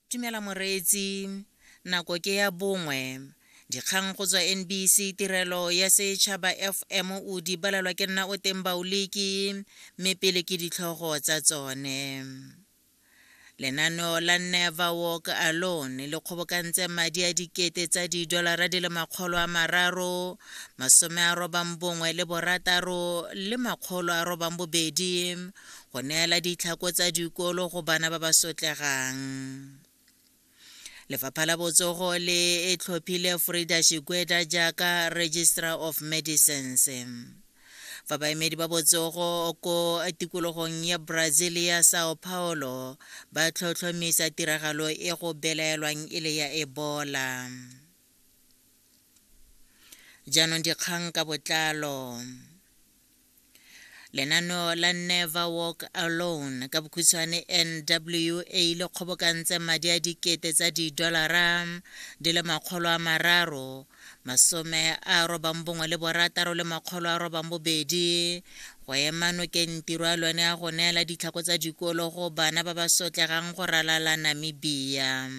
Dumela moreetsi. Nako ke ya bongwe. Dikgang go tswa NBC Tirelo ya Setšhaba FM o di balelwa ke nna o teng baoliki mme pele ke ditlhogo tsa tsone. Lenaneo la Never Walk Alone le kgobokantse madi a dikete tsa didolara di le makgolo a mararo masome a robang bongwe le borataro le makgolo a robang bobedi go neela ditlhako tsa dikolo go bana ba ba sotlegang lefapha la botsogo le e tlhophile frida shigweda jaaka registrar of medicines fa baemedi ba botsogo ko tikologong ya brazil ya sao paulo ba tlhotlhomisa tiragalo e go belaelwang e le ya ebola jaanong dikgang ka botlalo lenaneo la never walk alone ka bokhutshwane nwa e le kgobokantse madi a dikete tsa didolara di le makgolo a mararo masome a robang bongwe le borataro le makgolo a robang bobedi go ema nokeng tiro a lone a go neela ditlhako tsa dikolo go bana ba ba sotlegang go ralala namibia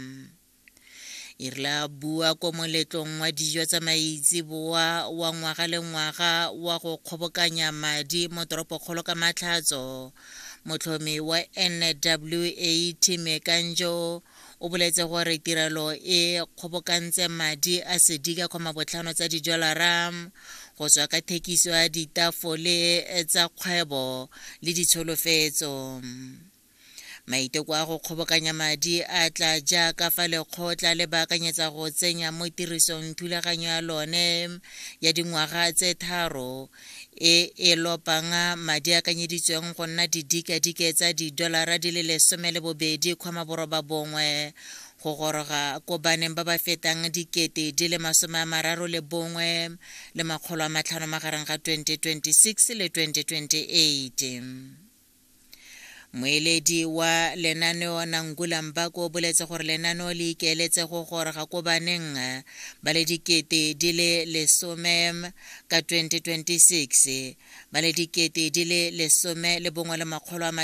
e rile a bua ko moletlong wa dijo tsa maitseboa wa ngwaga le ngwaga wa go kgobokanya madi mo toropokgolo ka matlhatso motlhomi wa nwa time kanjo o boletse gore tirelo e kgobokantse madi a sedika kgoma botlhano tsa didolara go tswa ka thekiso ya ditafole tsa kgwebo le ditsholofetso Maiteko a go kgobokanya madi a tla jaaka fa lekgotla le baakanyetsa go tsenya mo tirisong thulaganyo ya lone ya dingwaga tse tharo e e lopang madi a kanyeditsweng go nna didikadike tsa didolara di le lesome le bobedi kgoma boroba bongwe go goroga ko baneng ba ba fetang dikete di le masome a mararo le bongwe le makgolo a matlhano magareng ga 2026 le 2028 Moeledi wa lenaneo Nangula Mbako o boletse gore lenaneo le ikeeletse go goroga ko baneng ba le dikete di le lesome ka 2026 ba le dikete di le lesome le bongwe le makgolo a